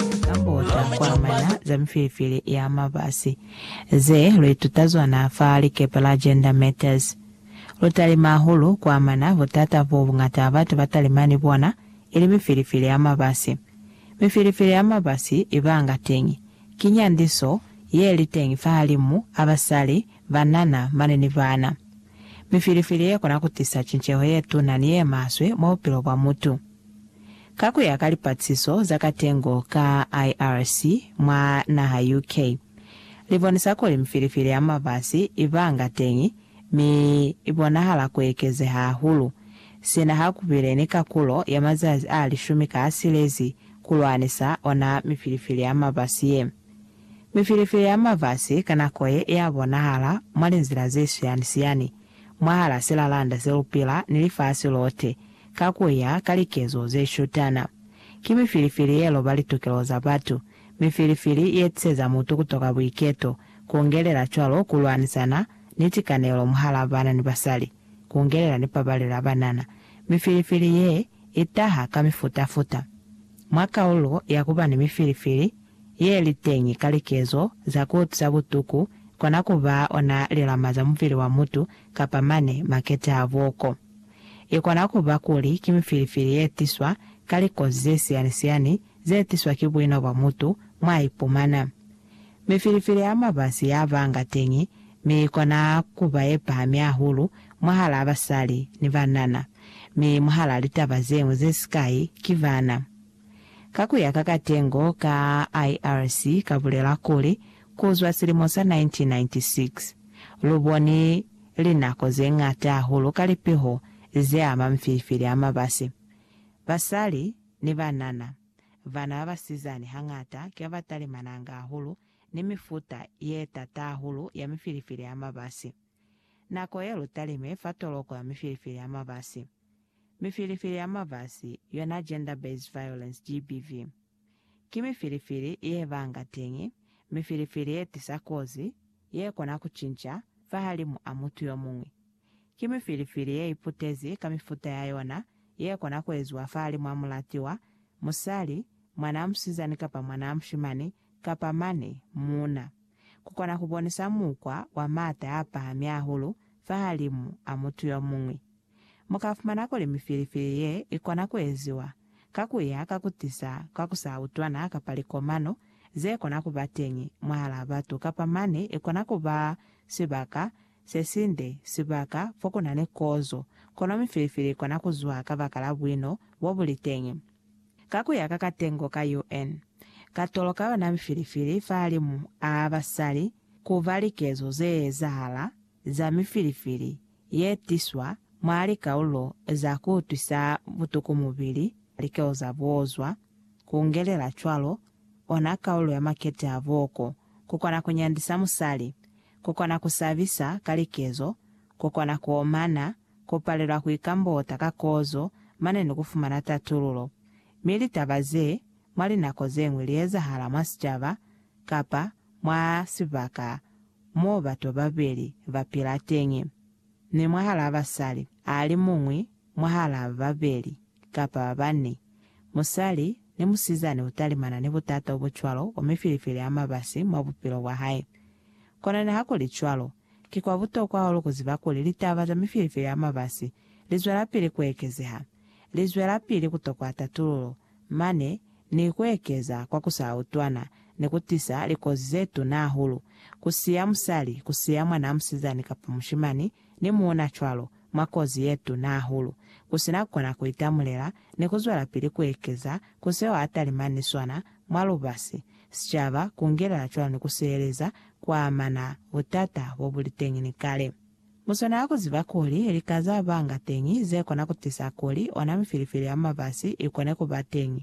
Likambota kwamana za mifilifili ya mabasi ze luituta zona fa likepe la Gender Matters. Lutalima hahulu kwamana butata bo bungata batu batalima ni bona, ili mifilifili ya mabasi. Mifilifili ya mabasi ibanga teñi ki nyandiso yeli teñi fahalimu a basali, banana mane ni bana. Mifilifili yekona kutisa cinceho yetuna ni yemaswe mwa bupilo bwa mutu. Ka ku ya ka lipatsiso za katengo ka IRC mwa naha UK, li bonisa kuli mifilifili ya mabasi i banga teñi mi i bonahala ku ekezeha hahulu sina ha ku bile ni kakulo ya mazazi a lishumi ka a silezi ku lwanisa ona mifilifili ya mabasi ye. Mifilifili ya mabasi ka nako ye ya bonahala mwa linzila ze siyani-siyani mwahal'a silalanda se lu pila ni lifasi lote, ka ku ya ka likezo ze shutana. Ki mifilifili ye loba litokelo za batu, mifilifili ye tiseza mutu ku toka buiketo, ku ongelela cwalo ku lwanisana ni tikanelo mwahal'a bana ni basali, ku ongelela ni pabalelo ya banana. Mifilifili ye i taha ka mifuta-futa. Mwa kaulo ya ku ba ni mifilifili ye li teñi ka likezo za ku utwisa butuku, kona ku ba ona lilama za mubili wa mutu kapa mane makete a buoko. I kona ku ba kuli ki mifilifili ye tiswa ka likozi ze siyani-siyani ze tiswa ki buino bwa mutu mwa ipumana. Mifilifili ya mabasi ya banga teñi, mi i kona ku ba ye pahami hahulu mwahalaa basali ni banana, mi mwahalaa litaba ze ñwi ze sikai ki bana. Ka ku ya ka katengo ka IRC ka bulela kuli, ku zwa silimo sa 1996, lu boni linako ze ñata hahulu ka lipiho ze ama mifilifili a mabasi. Basali ni banana, bana ba basizani hañata ki ba ba talimananga hahulu ni mifuta ye t'ata hahulu ya mifilifili a mabasi. Nako ye lu talime fa toloko ya mifilifili a mabasi. Mifilifili ya mabasi, yona Gender Based Violence, GBV, ki mifilifili ye banga teñi, mifilifili ye tisa kozi ye kona ku cinca fahalimu a mutu yo muñwi. Ki mifilifili ye iputezi ka mifuta ya yona ye kona ku eziwa fahalimu a mulatiwa, musali, mwanaa musizani kapa mwanaa mushimani, kapa mane, muuna. Ku kona ku bonisa mukwa wa m'ata a pahami hahulu fahalimu a mutu yo muñwi. Mu ka fumana kuli mifilifili ye i kona ku eziwa ka ku ya ka ku tisa ka ku sa utwana kapa likomano ze kona ku ba teñi mwahalaa batu kapa mane i kona ku ba sibaka se sinde, sibaka fo ku na ni kozo, kono mifilifili i kona ku zwa kabakala buino bo bu li teñi. Ka ku ya ka katengo ka UN. Katolo ka yona mifilifili fahalimu a basali ku ba likezo ze ezahala za mifilifili ye tiswa mwa likaulo za ku utwisa butuku mubili, likeo za buozwa, ku ngelela cwalo ona kaulo ya makete a boko, ku kona ku nyandisa musali, ku kona ku sabisa ka likezo, ku kona ku omana, ku palelwa ku ikambota ka kozo mane ni ku fumana tatululo. Mi litaba ze, mwa linako ze ñwi li ezahala mwa sicaba kapa mwa sibaka mo bato babeli ba pila teñi, mi mwahalaa basali a li muñwi mwahalaa ba babeli kapa ba bani, musali ni musizani u talimana ni butata obo cwalo o mifilifili a mabasi mwa bupilo bwa hae. Kono niha ku li cwalo, ki kwa butokwa hahulu ku ziba kuli litaba za mifilifili a mabasi li zwelapili ku ekezeha, li zwelapili ku tokwa tatululo, mane ni kuekeza kwa kusautwana ni kutisa likozi zetuna hahulu, kusiya musali, kusiya mwanaa musizani kapa mushimani ni muuna cwalo, mwa kozi yetuna hahulu, kusina kukona kuitamulela, ni kuzwelapili kuekeza ku seo atalimani ni sona mwa lubasi, sicaba, kungelela cwalo ni kusiheleza kuamana butata bobuliteñi ni kale. Mu swanela ku ziba kuli lika za banga teñi ze kona ku tisa kuli ona mifilifili ya mabasi i kone ku ba teñi,